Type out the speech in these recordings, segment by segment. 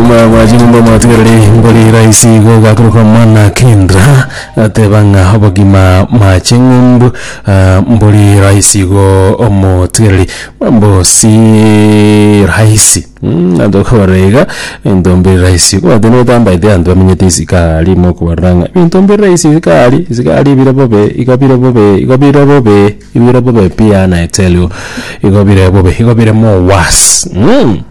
Obogima bwa chinyomba mwatigereri mbori rahisi igo gaturuka mana kindra ateba ng'a obogima ma ching'umbu ah, mbori rahisi igo omotigereri mambo si rahisi Mm, anto okobora iga into mbiri rahisi kobate notambaete anto bamenyete isika rimo okobarora ng'a ebinto mbiri rahisi isika aria isika aria ebire bobe igo bire bobe igo bire bobe ibire bobe pi ana eteli igo bire bobe igo bire more worse mm.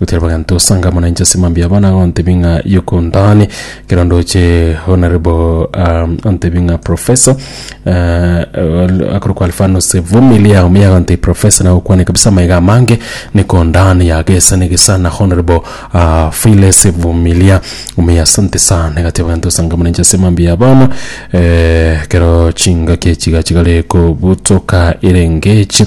Gotiga bagento osanga amo nainche ase mambia abo nagontebia ng'a yokontani ekero ndoche honorable um, ontebia ng'a professor uh, akorokwa alfanus vumilia omuya agontebia professor nagokwane kabisa amaiga amange nekondani yagesa negesa na honorable uh, files vumilia omuya asante sana egatiga bagento osanga amo nainche ase mambia abana eh, ekero chingaki chiga chigare kobutoka erengechi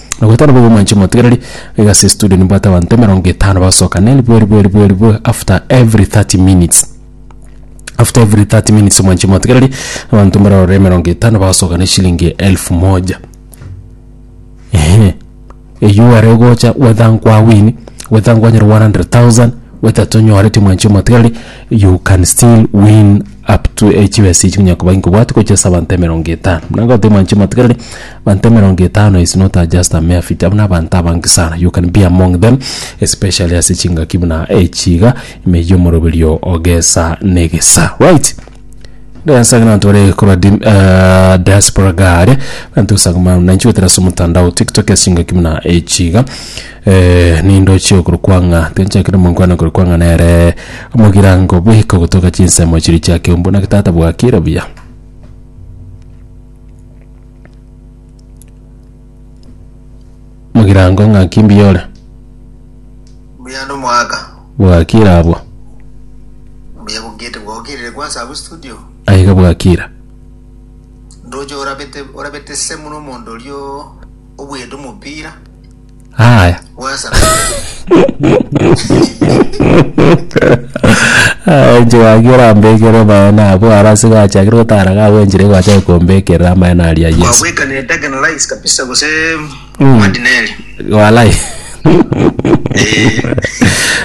Nagwetana bobe mwanche motigereri iga ase estudio nimbwate abanto emerongo etano bagosoka na eribwe eribwe eribwe eribwe after every 30 minutes after every 30 minutes mwanche motigereri abanto mbarore emerongo etano bagosoka na eshilingi elfu moja eeh eywo are ogocha whether nkwawini whether nkwanyora 100,000 whether tonyoreti mwanche motigereri you can still win. Up to eh, chibesa echi konya koba nkobwati gochia ase abanto emerongo etano. Buna nkagotebia mwanchi omotegereri, abanto emerongo etano is not a just a mere figure, abwo na abanto abange sana. You can be among them, especially ase chingaki buna echi iga, ime eyio omoroberio o gesa na egesa. Right? Ndeansa ng'a ntore korwa dim- eh, diaspora gare, banto osanga muna nanchi gotera ase omotandao TikTok ase chingaki buna echi iga. Eh, nindochie okorwa kwang'a tinchakire monkwana okorwa kwang'a nere omogirango bweka ogotoka chinsemo chiria chia keumbu naki tata bwakire buya mogirango ng'aki mbuya ore mbuya nomwaka bwakire abwo mbuya bugete bwokirire kwansa abu studio aiga bwakire ndoche orabete orabete semu nomonto orio obwete omopira Aya. Enche gaki orambekere amaene abo aro ase gachakire gotara gagwenchire gwachake kombekerera amaene aria Yesu. Wabweka ne Dagen Lights kabisa gose Madineri. Walai.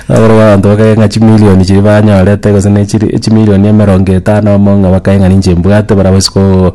Aboro abantu bakae ng'a chimilioni chiri banyorete gose ne chiri chimilioni emerongo etano amo ng'a bakae ng'a ninche mbwate bara bosi ko